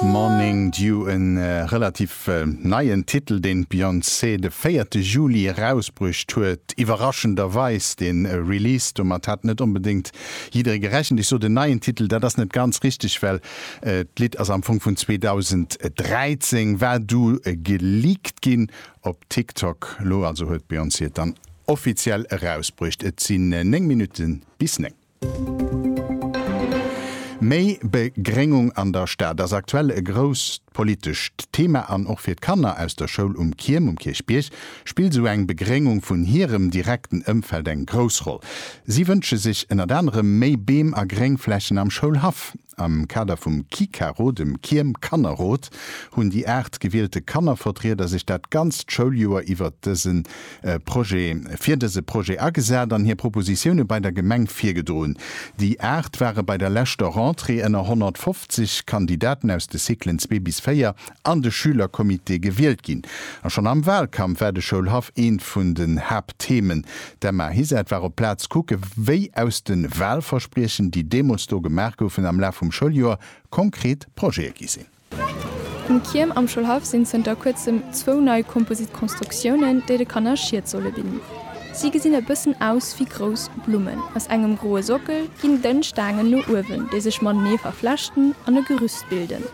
Morning Dew, e relativ neien Titel, deen d'Beyoncé de véierte Juli erausbruecht huet. Iwwerraschenderweis de Release, domat hat net onbedéngt jidderee gerechent. Ech sot en neien Titel, dat ass net ganz richteg, well d'Lidd ass am Fong vun 2013, war du geleakt ginn op TikTok. Elo also huet d'Beyoncé et dann offiziell erausbruecht. Et sinn 9 Minutte bis 9. Méi Begréngung an der Stad ass aktuell e grousst politescht Thema an och fir d'Kanner aus der Schoul Um Kierm um Kierchbierg spillt esou eng Begréngung vun hirem direkten Ëmfeld eng grouss Roll. Si wënsche sech ënnert anerem méi Beem a Gréngflächen am Schoulhaff. Am Kader vum Kikaro, dem Kiem Kannerrot, hunn déi 8 gewielte Kannervertrieder sech dat ganzt Schouljoer iwwert dëse Projet fir dëse Projet agesat an hir Propositioune bei der Gemeng virgedroen. Déi 8 ware bei der leschter Rentrée ënner 150 Kandidaten aus de Cyclen zwee bis véier an de Schülercomité gewielt ginn. A schonn am Wahlkampf war de Schoulhaff eent vun den Haaptthemen. D'Emma Hiset war op d'Plaz kucke wéi aus de Wahlverspriechen, déi deemools do gemaach goufen, am Laf vum Schouljoer konkret Projete gi sinn. Um CIEM am Schoulhaff sinn zënter kuerzem zwou nei Composite Constructiounen, déi de Kanner Schied solle bidden. Si gesinn e bëssen aus wéi grouss Blummen. Aus engem groe Sockel ginn dënn Staangen no uewen, déi sech matenee verflechten an e Gerüst bilden.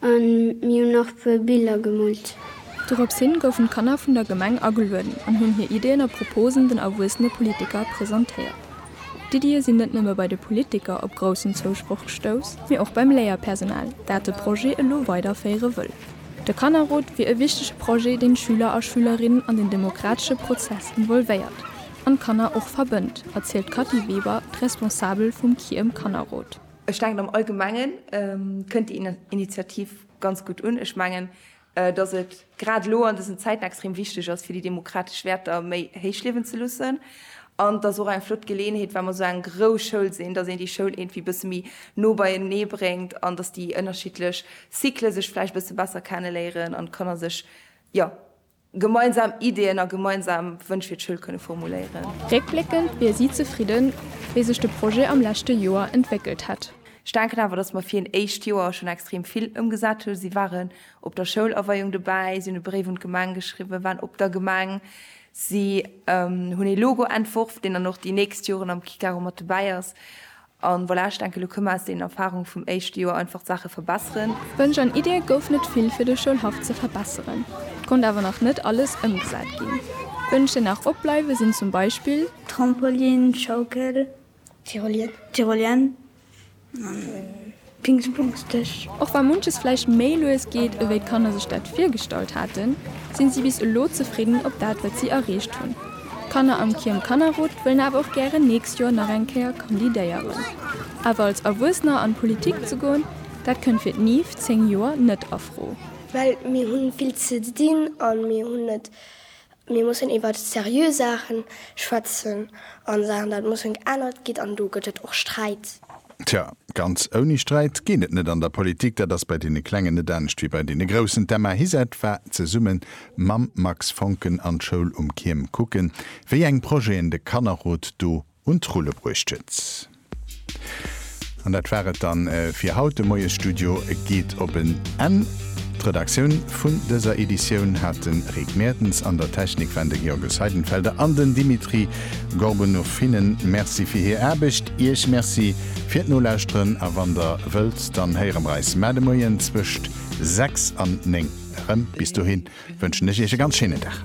A mir hunn nach e puer Biller gemoolt. Dorops hin goufen d'Kanner vun der Gemeng agelueden an hunn hir Iddien a Proposen den erwuessene Politiker presentéiert. D'Iddië sinn net nëmme bei de Politiker op groussen Zousproch gestouss, mee och beim Léierpersonal, dat de Projet elo weiderféiere wëll. De Kannerrot wier e wichtege Projet, deen d'Schüler a Schülerinnen an den demokratesche Prozess involvéiert an d'Kanner och verbënnt, erzielt d'Kathy Weber, d'Responsabel vum CIEM-Kannerrot. Ech denken am Allgemengen kënnt déi Initiativ ganz gutt un. Ech mengen, datt et grad elo an dësen Zäiten extrem wichteg ass, fir déi demokratesch Wäerter méi héich liewen ze loossen. An et ass och eng flott Geleeënheet, well mer esou eng grouss Schoul sinn, datt een déi Schoul iergendwéi e bësse méi no beienee bréngt an datt déi ënnerschiddlech Cycle sech vläicht e bësse besser kenne léieren an d'Kanner sech, jo, Gemeinsam Ideeën a gemeinsam Wënsch fir d'Schoul kënne formuléieren. Réckbléckend wier si zefridden, wéi sech de Projet am leschte Joer entwéckelt hätt. Ech denken awer, datt mer fir een éischt Joer schonn extrem vill ëmgesat hunn. Si waren op der Schoulaweiung dobäi, si hunn e Bréif un d'Gemeng geschriwwen, waren op der Gemeng, si hunn ee Logo entworf, deen dann och déi nächst Joren am Kick aro mat dobäi ass. An voilà, ech denken, elo kënne mer aus deenen Erfahrungen vum éischte Joer einfach d'Saache verbesseren. Wënsch an Iddie gouf net vill fir de Schoulhaff ze verbesseren. Et konnt awer nach net alles ëmgesat ginn. Wënsch déi nach opbleiwe sinn zum Beispill. Trampolin, Schaukel, Tyrolien, Tyrolien an. Dingsbumsdeg. Och wa munches vläicht méi lues geet ewéi d'Kanner sech dat virgestallt haten, sinn si bis elo zefridden op dat wat si erreecht hunn. D'Kanner am KIOM Kannerrot wëllen awer och gären nächst Joer nach eng Kéier kandidéieren. Awer als Erwuessener an d'Politik ze goen, dat kënnt fir d'Niv 10 Joer net a Fro. Well mir hunn vill ze dinn an mir hunn net Mir mussen iwwer seriö Saachen schwätzen an Saachen dat mussen geännert ginn an do gëtt et och Sträit. Tja, ganz ouni Sträit geet et net an der Politik. Dat ass bei deene Klengen net anescht wéi bei deene Groussen. D'Emma Hizett war zesumme mam Max Foncken an d'Schoul um Kierm kucken, wéi eng Projeten de Kannerrot do un d'Rulle bruecht huet. An dat war et dann fir haut. De Moiesstudio geet op en Enn. D'Redaktioun vun dëser Editioun hat de Rick Mertens, an der Technik waren de Georges Seidenfelder an den Dimitri Gorbunov. Hinnen Merci fir hir Aarbecht, Iech Merci fir d'Nolauschteren a wann Der wëllt, dann héiere mer eis mar de Moien zwëscht 6 an 9 erëm. Bis dohin wënschen ech Iech e ganz schéinen Dag.